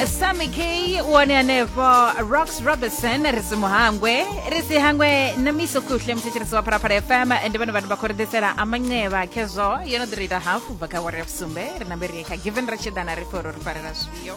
sami k one hanefho rox robertson ri si muhangwe ri si hangwe na miso kuhle muthetshelesi wa phalaphala fm ndi vhone vhathu vha khou ri ḓisela amanceva khezwo yo no ḓi ri ita hafu bva kha wari ya vusumbe ri na mberi kha given ri tshi ḓana ri pfhe uri ri farela zwifhio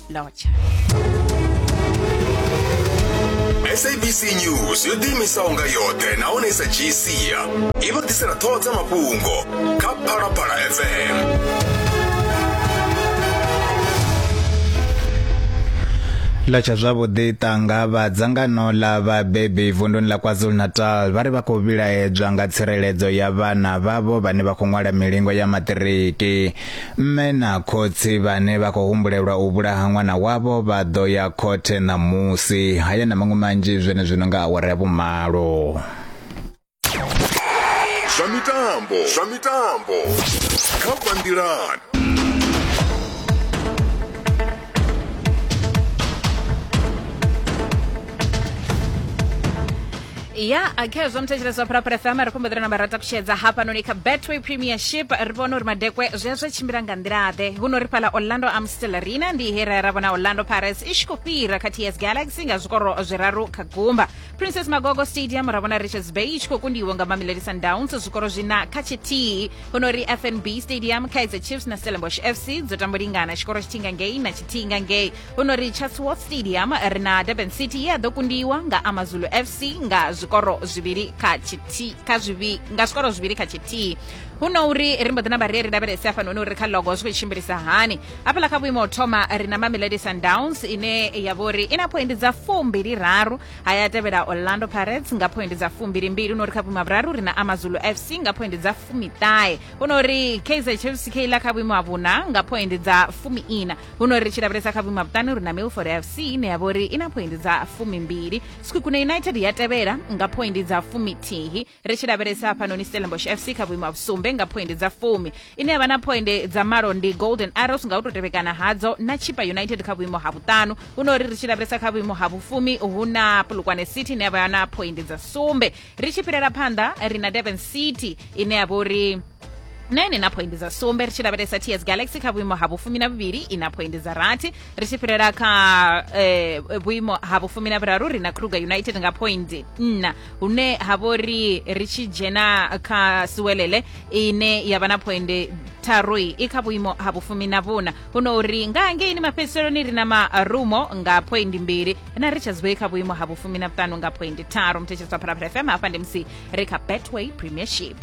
lotsha sabc news yo ḓiimisaho nga yoṱhe nahone sa gc i vha ḓisela ṱhoho dza mafhungo kha phalaphala fm ḽa tsha zwavhuḓi ṱanga vha dzangano ḽa vhabebi vunduni ḽa kwazulu-natal vha ri vha khou vhilaedzwa nga tsireledzo ya vhana vhavho vhane vha khou ṅwala milingo ya maṱiriki mme na khotsi vhane vha khou humbulelwa u vhulaha ṅwana wavho vha ḓo ya khothe ṋamusi haya na maṅwe manzhi zwenezwino nga awara ya vhumalo zwa mitambo zwa mitambo kha bandilan ya akhe zwa muthetshelesi wa phuraphura fm ri khombo ḓira na vharata kushedza hafhanoni kha betway premiership ri vhona uri madekwe zwi zwi tshimbila nga nḓila-ḓe huno ri fhala orlando amstel arena ndi here ra vhona orlando pirates i tshi khou fhira kha ts galaxy nga zwikoro zwiraru kha gumba princess magogo stadium ra vhona richards bay i tshi khou kundiwa nga mamelodi sundowns zwikoro zwina kha tshithihi honori fnb stadium kaizer chiefs na stellenbosch fc dzo tambo lingana tshikoro tshithihi nga ngei na tshithihi nga ngei honori chatsworth stadium ri na durban city ye a ḓo kundiwa nga amazulu fc nga zwikoro zwivhili kha tshithihi kha zwivi nga zwikoro zwivhili kha tshithihi huno uri ri mbo ḓi namba ri ri lavhelese afhanoni uri kha logo zwi khou tshimbilisa hani hafhaḽa kha vhuimo thoma ri na mamelodi sundowns ine ya vhori i na phoindi dza fumbili raru ha ya tevhela orlando pirates nga phoindi dza fumbili mbili hu no ri kha vhuimo ha vhuraru ri na amazulu fc nga phoindi dza fumiṱahe hu no ri kaizer chiefs keiḽa kha vhuimo ha vhuna nga phoindi dza fumiina hu no ri tshi lavhelesa kha vhuimo ha vhuṱanu ri na milford fc ine ya vhori i na phoindi dza fumimbili skukhune united ya tevhela nga phoindi dza fumithihi ri tshi lavhelesa hafhanoni stellenbosch fc kha vhuimo ha vhusumbe nga phoindi dza fumi ine ya vha na phoinde dza malo ndi golden arrows nga u tou tevhekana hadzo na chipa united kha vhuimo ha vhuṱanu huno uri ri tshi lavhelesa kha vhuimo ha vhufumi hu na pulukwane city ine ya vha na phoindi dza sumbe ri tshi fhirela phanḓa ri na durban city ine ya vha uri na ine na phoindi dza sumbe ri tshi lavhelesa ts galaxy kha vhuimo ha vhufumi na vhuvhili i na phoindi dza rathi ri tshi fhirela kha eh, vhuimo ha vhufumi na vhuraru ri na kruger united nga phoindi nna hune ha vho ri ri tshi dzhena kha siwelele ine ya vha na phoindi tharu i kha vhuimo ha vhufumi na vhuna huno uri nga hangeini mafhedziseloni ri na marumo nga phoindi mbili na ri tshazwei kha vhuimo ha vhufumi na vhuṱanu nga phoindi tharu mthetsheleswa phalaphala fm hafha ndi musi ri kha betway premiership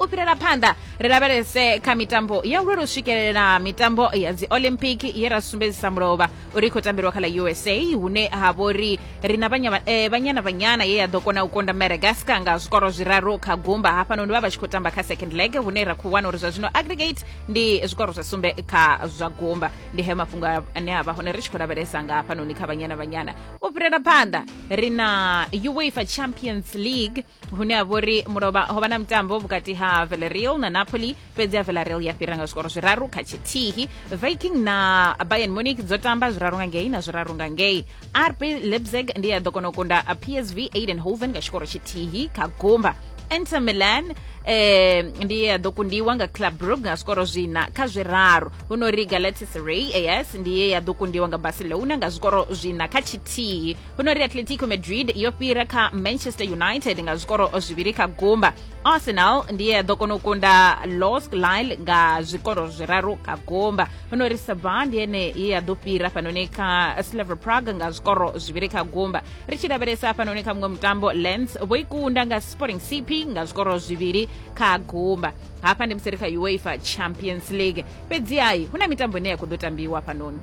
u fhirela phanḓa ri lavhelese kha mitambo ya uri ri swikelela mitambo ya dzi olympic ye ra sumbedzisa mulovha uri i khou tambelwa kha ḽa usa hune ha vha uri ri na eh, vhanyana vhanyana ye ya ḓo kona u konda madagascar nga zwikoro zwiraru kha gumba hafhanoni vha vha tshi khou tamba kha second leg hune ra khou wana uri zwa zwino aggregate ndi zwikoro zwa sumbe kha zwa gumba ndi hayo mafhungo ane a vha hone ri tshi khou lavhelesa nga hafhanoni kha vhanyana vhanyana u fhirela phanḓa ri na uefa champions league hune ha vhori mulovha ho vha na mutambo vhukati ha Villarreal na Napoli fhedzi ya Villarreal ya fhira nga zwikoro zwiraru kha tshithihi Viking na Bayern Munich dzo tamba zwiraru nga ngei na zwiraru nga ngei RB Leipzig ndi ya ḓo kona u kunda PSV Eindhoven nga tshikoro tshithihi kha gumba Inter Milan eh ndi ya ḓo kundiwa nga Club Brugge nga zwikoro zwina kha zwiraru huno ri Galatasaray yes ndi ye ya ḓo kundiwa nga Barcelona nga zwikoro zwina kha tshithihi huno ri atletico madrid yo fhira kha manchester united nga zwikoro zwivhili kha gumba arsenal ndiye ya ḓo kona u kunda los lile nga zwikoro zwiraru kha gumba huno ri saba ndi ene ye ya ḓo fhira fhanoni kha slaver prague nga zwikoro zwivhili kha gumba ri tshi lavhelesa fhanoni kha muṅwe mutambo lens vho ikunda nga sporting cp nga zwikoro zwivhili kha gumba hafha ndi musi ri kha uefa champions league fhedzi hai hu na mitambo ine ya khou ḓo tambiwa fhanoni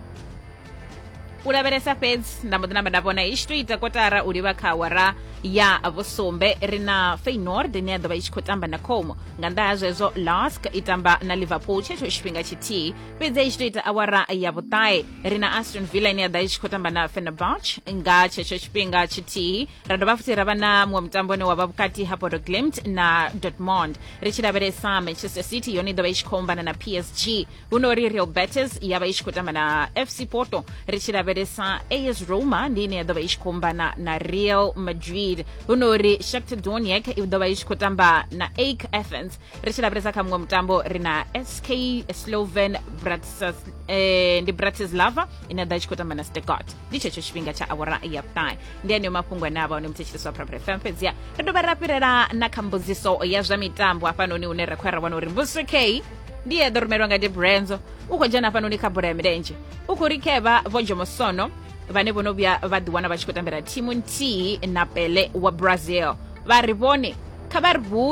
u lavhelesa fhedzi nda mbo ḓi namba nda vhona i tshi to ita kotara u livha kha awara ya vhusumbe ri na feynord ine ya ḓovha i tshi khou tamba na como nga nnḓa ha zwezwo lask i tamba na liverpool tshetsho tshifhinga tshithihi fhedzi i tshi to ita awara ya vhuṱae ri na aston villa ine ya ḓa i tshi khou tamba na fenerbach nga tshetsho tshifhinga tshithihi ra dovha futhi ra vha na muṅwe mutambo une wa vha vhukati ha bodo glimt na dortmond ri tshi lavhelesa manchester city yone i ḓovha i tshi khou ombana na psg huno ri real betis ya vha i tshi khou tamba na fc porto ri tshi lavhelesa as roma ndi ine ya ḓo vha i tshi khou mbana na real madrid huno ri shakta doniac i ḓo vha i tshi khou tamba na ake athens ri tshi lavhelesa kha muṅwe mutambo ri na sk sloven Bratislav, eh, ndi bratislava ine ya ḓo i tshi khou tamba na stegart ndi tshetsho tshifhinga tsha awara ya vhuṱahe ndi aneyo mafhungo ane a vha one muthetshelesi wa prapra fm fhedzia ri dovha ra fhirela na kha mbudziso ya zwa mitambo hafhanoni hune ra khou ya ra vhona uri mbuso k ndi eḓo rumelwa nga debrenzo u khou dzhena hafhanoni kha bola ya milenzhe u khou rikevha vho jomosono vhane vho no vhuya vha ḓiwana vha tshi khou tambela thimu nthihi na pele wa brazil vha ri vhone kha vha ri